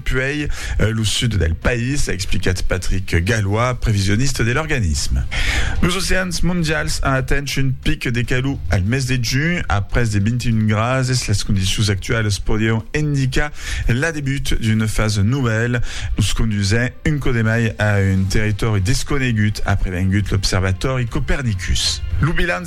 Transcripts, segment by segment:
puèi lo sud del país, a explicat Patrick Gallois, previsionista de l'organisme. Los oceans mondials an atent un pic de calor al mes de junh, a pres de 21 grases. Las condicions actualas podián indicar l'adebut d'una fasa novèla, nos condusent un cò de mai a un territòri desconegut, a prevengut l'observatòri Copernicus. Lo bilan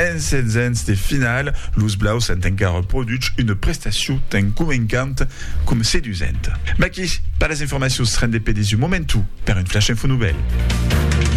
En setzens de finala, los blaus an encara produch una prestacion tan convencanta coma sedusenta. Maquis per las informacions, rendez-pe dins un momentu per un Flash Info Novèl.